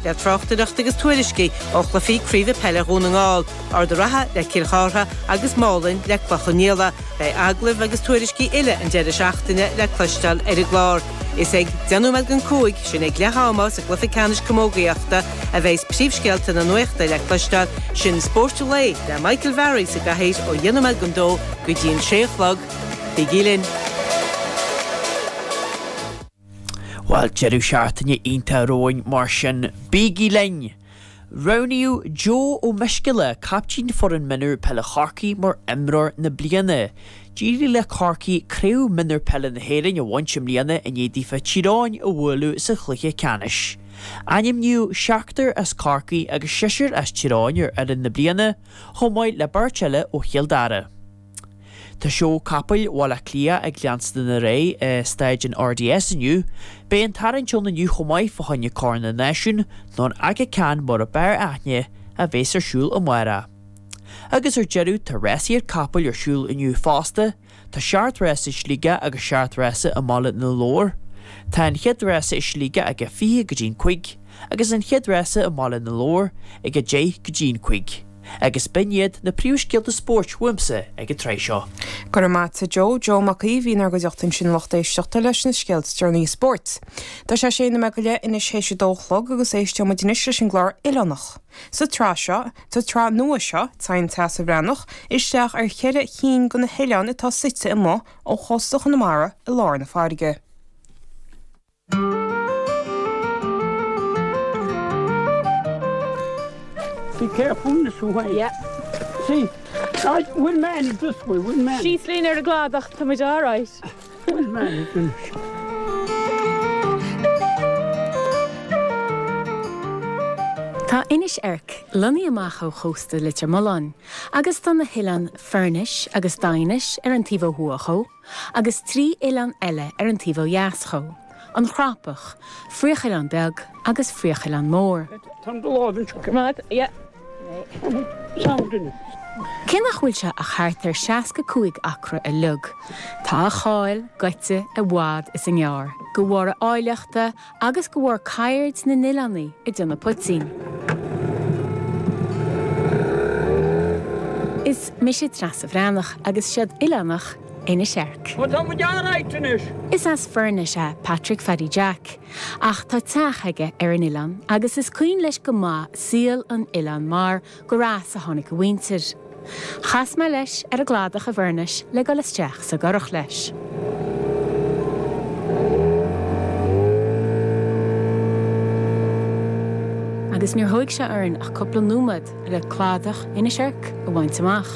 le tráchtaireacht agus tuairiscí ó chluichí craoibhe peile Dhún na nGall, Ard a' Ratha le Cill Chartha agus Málainn le Cloich Cheann Fhaola. Beidh agallaimh agus tuairiscí uile an deireadh seachtaine le cloisteáil ar an gclár. Is ag 10 nóiméad don 5 sin ag leath ama sa gcluiche ceannais camógaíochta a bheas príomhscéalta na nuachta le cloisteáil. Sin Spórt an Lae le Michael Varry sa gcathaoir ó 10 nóiméad don 2 go dtí an 6 a chlog. Bígí linn. Bhuel, deireadh seachtaine iontach romhainn mar sin bígí linn! Roghnaíodh Joe Ó Miscílla, caiptín foireann mionúr peile Chorcaí mar imreoir na bliana. D'éirigh le Corcaigh craobh mionúr peile na hÉireann a bhaint i mbliana i ndiaidh daofa Tír Eoghain a bhualadh sa chluiche ceannais. Ainmníodh seachtar as Corcaigh agus seisear as Tír Eoghain ar fhoireann na bliana, chomh maith le beirt eile ó Chill Dara. Tá Seó Capaill Bhaile Átha Cliath ag leanstan ar aghaidh i Staid an RDS inniu. Beidh an tarraingt ann inniu chomh maith fá choinne Corn na Náisiún, nó an Aga Khan mar ab fhearr aithne, a bheas ar siúl amárach. Agus ar deireadh tá rásaíocht capall ar siúl inniu fosta, tá seacht rása i Sligeach agus seacht rása i mBaile na Lobhar. Tá an chéad rása i Sligeach ag a 20 go dtí an cúig, agus an chéad rása i mBaile na Lobhar ag a 10 go dtí an cúig. Agus b'in iad na príomhscéalta spóirt uaimse ag an tráth seo. Go raibh maith a't Joe Joe Mac Aoidh, a bhí inár gcuideachta ansin a lucht éisteachta leis na scéalta is deireanaí spóirt. Tá sé 6 nóiméad go leith anois théis a dó a chlog agus éisteoidh muid anois leis an gclár oileánach. Sa tsraith seo, sa tsraith nua seo, téann Treasa Bhreathnach isteach ar cheithre chinn de na hoileáin atá suite amuigh ó chósta Chonamara i lár na farraige. Be careful in this way. Yeah. See, I, we'll manage this way, we'll manage. Síos linn ar an gcladach tá muid all right. We'll manage in this. Tá Inis Eirc lonnaithe amach ó chósta Leitir Mealláin agus tá na hoileáin Foirnis agus Daighinis ar an taobh ó thuaidh dhó. agus trí oileán eile ar an taobh ó dheas dhó, An Chrapach, Fraochoileán Beag agus Fraochoileán Mór. Cé nach bhfuil sé ach thart ar 65 acra uilig, tá a cháil gaibhte i bhfad is i ngearr, de bharr a áilleachta agus de bharr ceird na n-oileánaigh ag déanamh poitín. Is mise Treasa Bhreathnach agus seod oileánach Inis Eirc. Ó tá muid alright anois! Is as Foirnis é Patrick Phaddy Jack, ach tá teach aige ar an oileán agus is cuimhin leis go maith saol an oileáin mar Gur as a tháinig a mhuintir. Chas mé leis ar an gcladach i bhFoirnis le dul isteach sa gcurach leis. Agus níor thóig sé orainn ach cúpla nóiméad le cladach Inis Oirc a bhaint amach.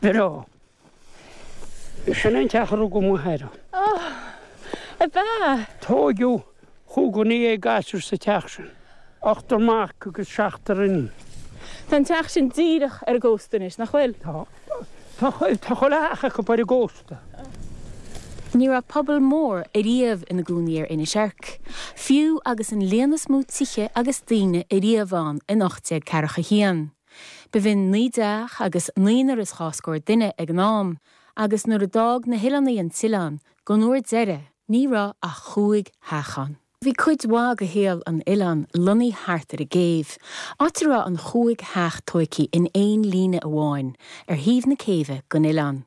Bro. Sin an teach a rugadh m'athair ann. Oh, ab ea? Tóigeadh cúig dhuine dhéag gasúr sa teach sin. Ochtar mac agus seachtar iníon. Tá an teach sin díreach ar an gcósta anois, nach bhfuil? Tá. Tá chuile theach acu ar an gcósta. Ní raibh pobal mór ariamh ina gcónaí ar Inis Oirc, fiú agus an líon is mó tithe agus daoine ariamh ann in ocht déag ceathracha a haon. B'in naoi dteach agus naonúr is dhá scór duine ag an am, agus nuair a d'fhág na hOileánaigh an tOileán, don uair deiridh, ní raibh ach chúig theach ann. Bhí cuid mhaith de shaol an Oileáin lonnaithe thart ar an gcéibh, áit a raibh an chúig theach tóigthe in aon líne amháin ar thaobh na céibhe den Oileán,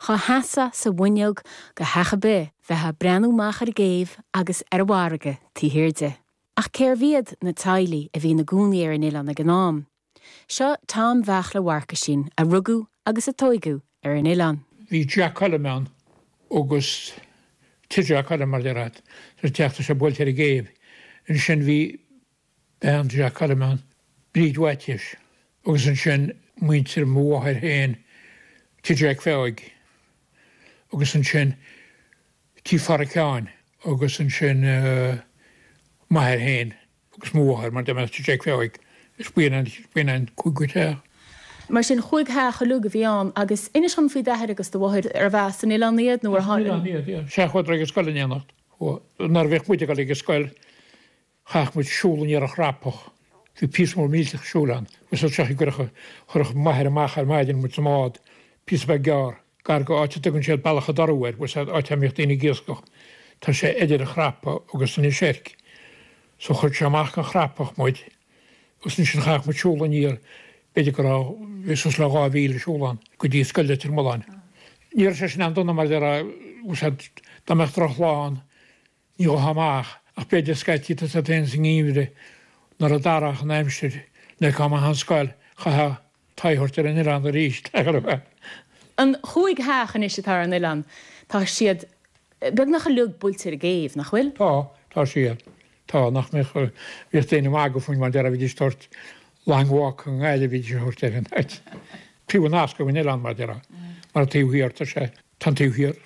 dhá seasfá sa bhfuinneog de theach ar bith bheifeá ag breathnú amach ar an gcéibh agus ar an bhfarraige taobh thiar di. Ach cérbh iad na teaghlaigh a bhí ina gcónaí ar an oileán ag an am? Seo Tom Bheairtle Mharcuisín a rugadh agus a tóigeadh ar an oileán. Bhí Jack Colm ann agus Tigh Jack Colm mar deir siad. Sa teach tá sé buailte ar an gcéibh. Ansin bhí bean Jack Colm ann, Bríd Mhaitiais, agus ansin muintir mo mháthair féin, Tigh Jack Pheig, agus ansin, Tigh Farracháin agus ansin m'athair féin agus mo mháthair, mar dá mbeadh Tigh Jack Pheig, is b'in an cúigiú teach. Mar sin, chúig theach uilig a bhí ann. Agus inis dom faoi d'athair agus do mháthair, arbh as an Oileán iad nó ar tháinig siad? As an Oileán iad, yeah. Sea, chuadar ag scoil in éineacht. Nuair a bhíodh muid ag dul ag an scoil, Chaith muid siúl aniar an Chrapach. Bhí píosa mór millteach siúil ann, agus as seo i gcríocha chuireadh m'athair amach ar maidin muid sa mbád, píosa beag gearr, gar go áit a dtugann siad Bealach an Dorú air, bhuel, áit a mbíodh daoine ag iascach. Tá sé idir an Chrapach agus Inis Oirc. So chuir sé amach go an Chrapach muid, agus ansin chaith muid siúl aniar, b'fhéidir go raibh, bhí suas le dhá mhíle siúl ann, go dtí Scoil Leitir Mealláin. Ní raibh sé sin an-dona mara mbeadh drochlá ann. Ní ghabhfá amach, ach b'fhéidir, scaití tá siad féin sa ngeimhreadh nuair a d'athraíodh an aimsir nuair a thiocfá amach ón scoil, chaithfeá t'aghaidh a thabhairt ar an oileán arís, le gurbh é. An chúig theach anois atá ar an oileán, tá siad beagnach uilig buailte ar an gcéibh, nach bhfuil? Tá, tá siad. Tá, nach mbeadh, bhíodh daoine ag magadh fúinn mar déarfá, bhídís ag tabhairt Long Walk i nGaillimh, bhídís a thabhairt ar an áit. Taobh an fhoscaidh den oileán mar déarfá, mar an taobh thiar, tá sé, tá an taobh thiar.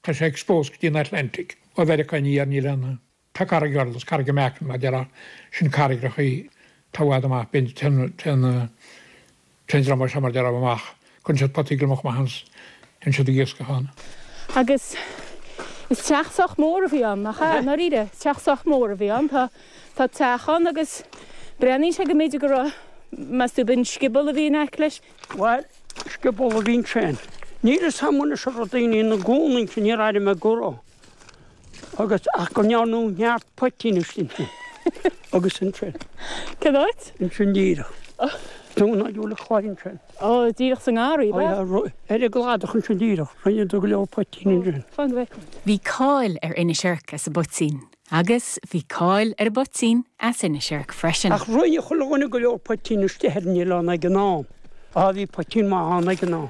Tá sé exposed go dtí an Atlantic ó Mheiriceá aniar, níl ann ann. Tá carraig Durlas, Carraig an Meacan mar a déarfá, sin carraigreachaí atá i bhfad amach, bíonn, téann, téann, téann an dream seo mar a déarfá amach, cuireann siad potaí gliomach amach ann 's téann siad ag iascach ann. Agus is teach sách mór a bhí ann, nach ea? I ndáiríre, is teach sách mór a bhí ann, tá, tá teach ann agus breathnaíonn sé go mb'fhéidir go raibh, meas tú, ab in scioból a bhí in aice leis? Bhail, scioból a bhí ansin. Níl 'fhios a'm anois an raibh daoine ina gcónaí ansin, níor airigh mé go raibh, agus, ach go ndearnadh neart poitín istigh ansin, agus ansin. Cén áit? Ansin díreach. Dún a'd Úna Chláir ansin. Ó, díreach sa ngarraí, ab ea? Ó yeah, ar an gcladach ansin díreach, rinneadar go leor poitín ansin. Fan go bhfeicfidh mé. Bhí cáil ar Inis Oirc as a bpoitín. Agus bhí cáil ar an bpoitín as Inis Oirc freisin. Ach rinne chuile dhuine go leor poitín istigh ar an oileán ag an am. Á, bhí poitín maith ann ag an am.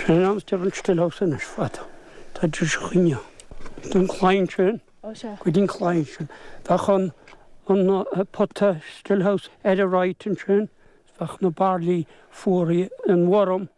Sin an ainm atá ar an stillhouse anois, fada. Tá an deoise chuinge ann. An claí ansin, go dtí an claí ansin. Bheadh an pota, stillhouse, ar a right ansin. Bheadh na bairillí fuaraithe, an worm.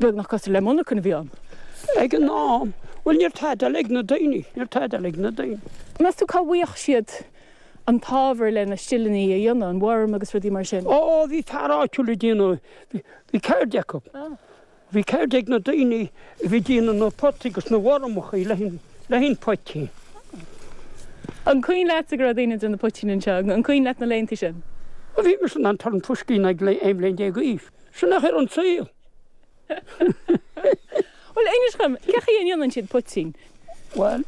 beagnach cosúil le monarchan a bhí ann ag an am. Bhuel, ní raibh tada eile ag na daoine, ní raibh tada eile ag na daoine. Meas tú cá bhfaigheadh siad an t-ábhar lena stileannaí a dhéanamh, an worm agus rudaí mar sin? Ó, bhí fear áitiúil ag déanamh, bhí ceird acu. Bhí ceird ag na daoine a bhí ag déanamh na potaí agus na wormachaí le haghaidh an. le haghaidh an phoitín. An cuimhin leatsa go raibh daoine ag déanamh poitín anseo? An cuimhin leat na laethanta sin? Bhí mise in ann turn fuisce ag 11 bhliain d'aois. Sin é an chaoi a raibh an saol. Bhuel, inis dhom, cén chaoi a ndéanann siad poitín? Bhuel,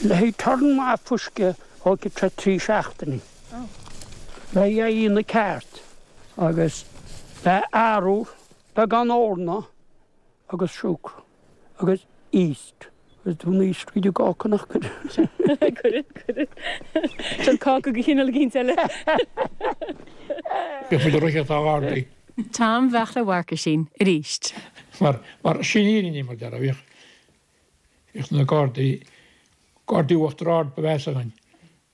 le haghaidh turn maith fuisce thógfadh sé trí seachtainí. Le haghaidh é a dhéanamh ceart agus bheadh arú beagán eorna agus siúcra. agus yeast. Is do na yeast go dtí cáca nach gcuireann. Cuireann, cuireann. Sin cáca de chineál eicínt eile. Bhí muid ag rith ó na Gardaí. Tom, bheadh le Mharcuisín aríst. Mar, mar, sin í an fhírinne, mar a déarfá. Bhíodh, bhíodh na Gardaí, Gardaí Uachtar Ard ba mheasa againn.